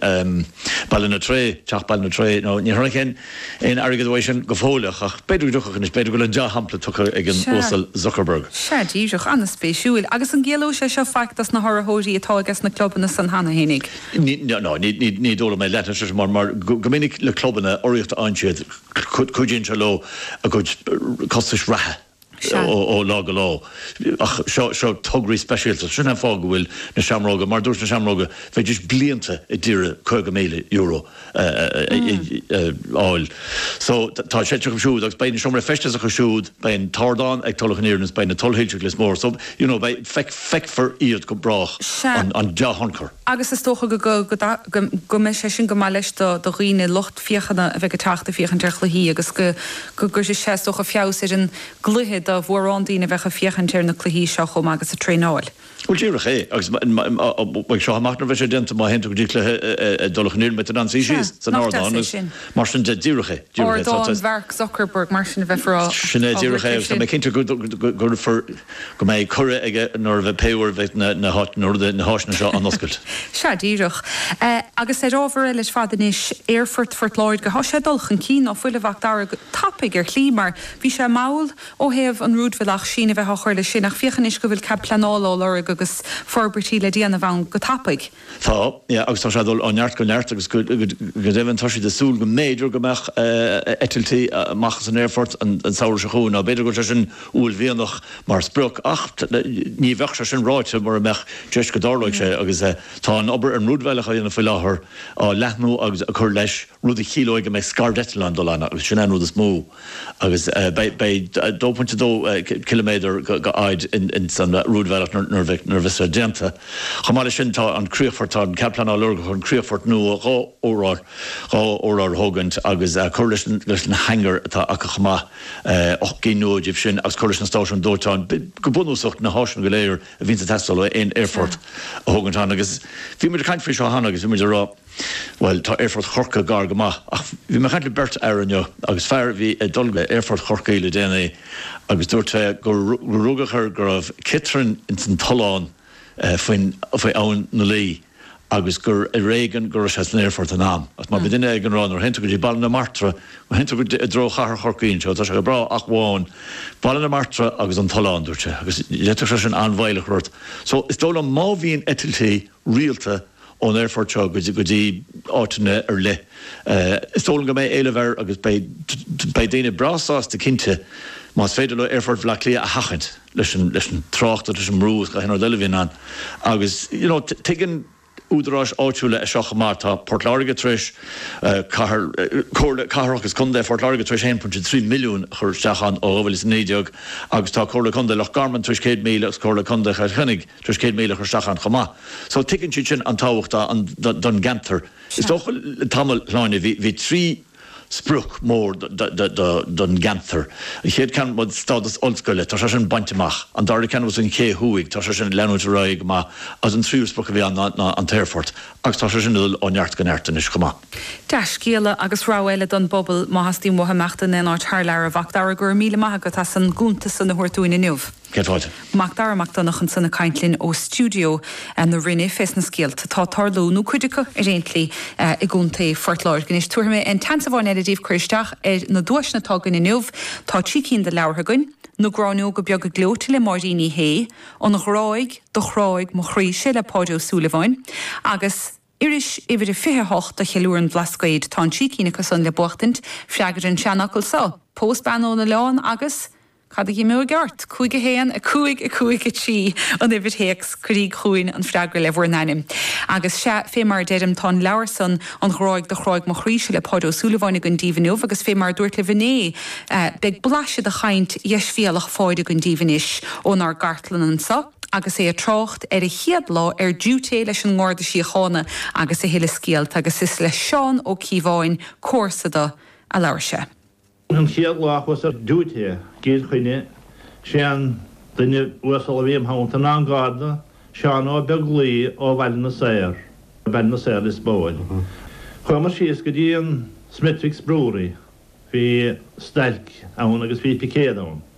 Ballinatray, Teach Ballinatray, now níor tháinig aon airgead uaidh sin go fóill ach b'fhéidir go dtiocfadh anois, b'fhéidir go bhfuil an dea-shampla tugtha ag an Uasal Zuckerberg. Sea, díreach, an-spéisiúil. Agus an gciallóidh sé seo faic dos na hurraitheoirí atá aige sna clubanna san cheana féinig? Ní dóigh liom é, leanfaidh sé seo mar go minic le clubanna, urraíocht a fhaigheann siad, cuidíonn sé leo a gcuid costais reatha, Sea, ó lá go ló. Ach seo tograí speisialta. Sin an fáth go bhfuil na Seamróga, mar a dúirt na Seamróga, bheidís blianta a d'iarraidh €50,000 a fháil. So tá sé acu siúd agus beidh na seomraí feistis acu siúd, beidh an t-ardán ag Tulach an Iarainn agus beidh na tuilsoilse ag Lios Mór. So, you know, beidh, feicfear iad go brách, an dea-thionchar. agus is dócha go mbeidh sé sin go maith leis do dhaoine, lucht féachana a bheidh ag teacht ag féachaint ar chluichí agus go gcuirfidh sé, is dócha, feabhas ar an gcluiche do mhórán daoine a bheadh ag féachaint ar na cluichí seo chomh maith agus ag traenáil. Bhuel, díreach é. Agus as seo amach nuair a bheidh sé déanta, má théann tú go dtí cluiche i dTulach an Iarainn beidh tú in ann suí síos san ardán agus mar sin de. Díreach é. Ardán Mhark Zuckerberg, mar sin a bheifear á thabhairt air sin. Sin é, díreach é agus tá mé cinnte go gcuirfear. go mbeidh cuireadh aige nuair a bheidh pé uair a bheidh na háiseanna seo á n-oscailt. Sea, díreach. Agus ar ábhar eile ar fad anois, Aerfort Phort Láirge, tá sé ag dul chun cinn ná fuil, a Mhac Dara, go tapaidh ar shlí mar bhí sé mall ó thaobh an rúidbhealach, síneadh a bheith á chur leis sin ach féach anois go bhfuil cead pleanála á lorg agus forbairtí le déanamh ann go tapaidh. Tá, agus tá sé ag dul ó neart go neart agus go deimhin tá siad ag súil go mb'fhéidir go mbeadh eitiltí amach as an aerfort an samhradh seo chugainn. Now b'fhéidir go bhfuil sé sin uaillmhianach mar sprioc ach ní bheadh sé sin ráite mura mbeadh deis go dtarlóidh sé agus tá an obair ar an rúidbhealach á dhéanamh faoi láthair, á leathnú agus ag cur leis, rud a chiallóidh go mbeidh scairdeitleáin ag dul ann agus sin é an rud is mó. agus beidh 2.2 km de fhaid ins an rúidbhealach nuair a bheas sé déanta. Chomh maith leis sin tá an críochfort, tá an cead pleanála lorgtha chun críochfort nua dhá, dhá urlár a thógaint agus cur leis an hangar atá acu chomh maith, 8 gcinn nua díobh sin agus cur leis an stáisiún dóiteáin. Go bunúsach na háiseanna go léir a bhíonns ag teastáil ó aon aerfort a thógaint ann agus bhí muid ag caint faoi seo cheana agus bhí muid ag rá, Bhuel, tá Aerfort Chorcaí gar go maith ach bhí mé ag caint le beirt fhear inniu agus fear a bhí ag dul go hAerfort Chorcaí le déanaí agus dúirt sé gur rugadh air go raibh ciotrainn ins an tollán faoin, faoi Abhainn na Laoi agus gur ar éigean go raibh sé san aerfort in am. Agus mar a bhí duine éigin á rá nuair a théann tú go dtí Baile na Martra, má théann tú go, i dtreo Chathair Chorcaí anseo, tá sé go breá ach amháin Baile na Martra agus an tollán, dúirt sé, agus d'fhéadfadh sé sin an-mhoill a chur ort. So, is dóigh liom má bhíonn eitiltí rialta, ón aerfort seo go dtí áiteanna ar leith. Is dóigh liom go mbeidh éileamh air agus beidh daoine breá sásta cinnte más féidir leo aerfort Bhaile Átha Cliath a sheachaint leis an trácht agus leis an mbrú agus gach aon rud eile a bhíonn ann. Agus you know tuigeann údaráis áitiúla é seo chomh maith, tá Port Láirge tar éis, cathair, Comhairle Cathrach agus Contae Phort Láirge tar éis 1.3 milliún a chur isteach ann ó 2019 agus tá Comhairle Contae Loch Garman tar éis 100,000 agus Comhairle Contae Chill Chainnigh tar éis 100 míle a chur isteach ann chomh maith. So tuigeann siad sin an tábhacht don gceantar. Is dócha le tamall, a Shláine, bhí trí sprioc mór don gceantar. An chéad ceann was stádas ollscoile, tá sé sin bainte amach. An dara ceann was an Ché Thuaidh, tá sé sin ag leanúint ar aghaidh go maith agus an tríú sprioc a bhí ann ná an t-aerfort agus tá sé sin ag dul ó neart go neart anois chomh maith. Dea-scéala agus rogha eile don bpobal, má theastaíonn uathu imeacht in aon áit thar lear, a Mhacdara, go raibh míle maith agat as an gcuntas san a thabhairt dúinn inniu. Sea, Mac Dara Mac Donnacha ansan ag caint linn ó stiúideo na Rinne fés na scéalta atá ag tarlú, nó cuid acu, ar aon tslí, i gContae Phort Láirge. Anois, tabharfaidh mé aon tseans amháin eile daoibh cur isteach ar na duaiseanna atá againn inniu. Tá trí cinn de leabhartha againn, Na Gráinneoga Beaga Gleoite le Máirín Uí Shé, An Ghráig do Chráigh mo Chroíse le Páid Ó Súilleabháin, agus. Iris uimhir a 28 de Cheiliúradh an Bhlascaoid, tá an trí cinn acu san le buachtaint, freagraíg an seanfhocal so, Pós bean ón oileán agus Cad a dh'imeoidh ort? 5 1 5 5 3 an uimhir théacs, cuiríg chugainn an freagra le bhur n-ainm. Agus sea, fé mar a deirim, tá an leabhar san, An Ghráig do Chráigh mo Chroíse le Páid Ó Súilleabháin againn daoibh inniu agus fé mar a dúrt libh inné, beidh blaiseadh de chaint dheisbhéalach Pháid againn daoibh anois ónár gcartlann anso. agus é ag trácht ar a chéad lá ar diúité leis an nGarda Síochána agus a thuilleadh scéalta agus is le Seán Ó Cíobháin comharsa dó a labhair sé. An chéad lá a chuas ar diúité i gCill Chainnigh sé an duine uasal a bhí im theannta ná an Garda, Seán Ó Beaglaoich ó Bhaile na Saor, Baile na Saor Lios Póil. Chuamar síos go dtí an Smithwick's Brewery, bhí stailc ann agus bhí picéad ann.